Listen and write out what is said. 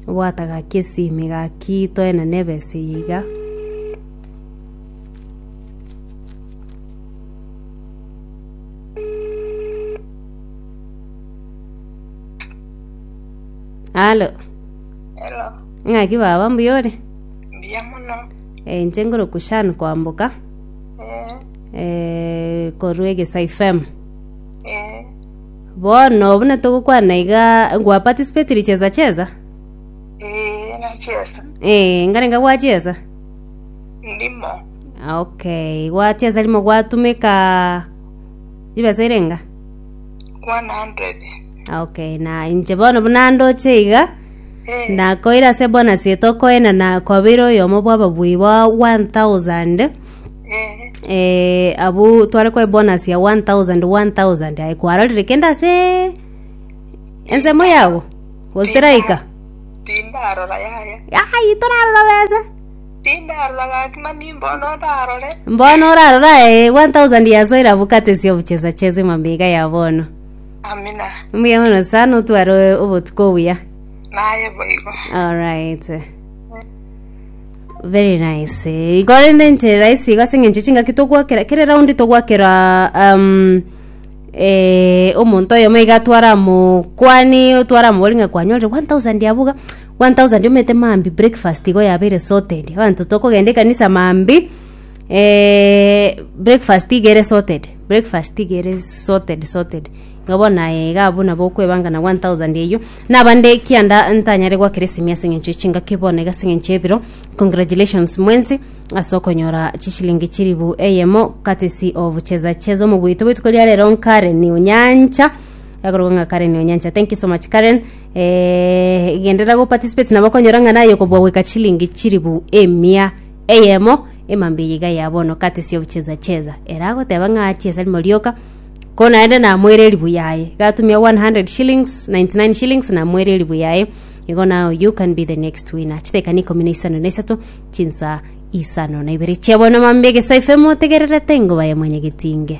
Obwata gaki esimi gaki toenane ebesa eye iga. Alo, Hello, ng'aki baba mbuya ore? mbuya muno. Eh, inche ngoroku Shan kwamboka Eh, eh, korwa egesa ifem. eh, Bono buna togokwana iga gwaparticipatire chiesa chiesa? Ee, nachesa. Eh, nkarenge gwachiesa? Ndimo. Ah, Okay, gwachiesa rimo gwatumeka chibesa irenga? 100. Ah, Okay, na inche bono buna ndoche iga Eh, nakoira ase bonus etokoenana kwabeire oyomo bw'ababui ba 1000 eh, abwo tware kwa bonus ya 1000 1000 aye kwarorire kende ase ensemo yago gositeraika tindarora yaya ai torarora besa tindarora gaki mani mbono ndarore mbono orarora eh, 1000 yasoire abwo katesi obuchesa chesa emambega ya bono amina mbuya mono sana otware obotuko obuya naye boigo alright Very nice. Igo rende enchera rahisi iga ase eng'encho chingaki togwakera kere raundi togwakera um, eh, omonto oyomo iga atware amokwani otware amobori ng'a kwanyorire 1000 abwo iga 1000 omete maambi breakfast igo yabeire sorted abanto tokogenda ekanisa maambi eh, breakfast iga ere sorted breakfast iga ere sorted sorted Iga bono aye iga abwo nabo okwebangana 1000 eyio nabande kianda ntanyare gwakeresimia ase eng'encho ye chingaki bono iga ase eng'encho y'ebiro congratulations mwensi ase okonyora chishilingi chiribu eyemo courtesy of cheza cheza omoguito bwetuko ria rero nkaren onyancha agorogwa ng'a karen onyancha thank you so much karen eh, gendera go participate nabo okonyora ng'a naye okobua goika chishilingi chiribu emia eyemo emambia eye iga ya bono courtesy of cheza cheza ere agoteba ng'a chiesa rimo rioka Ko naende namoire eribu yaye. Gatumia 100 shillings, 99 shillings namoire eribu yaye. Igo now you can be the next winner. Chitekani ikomi na isano na isato, chinsa isano na ibere chia bono mambia egesaifemo tegererete ingoba ya mwenye getinge.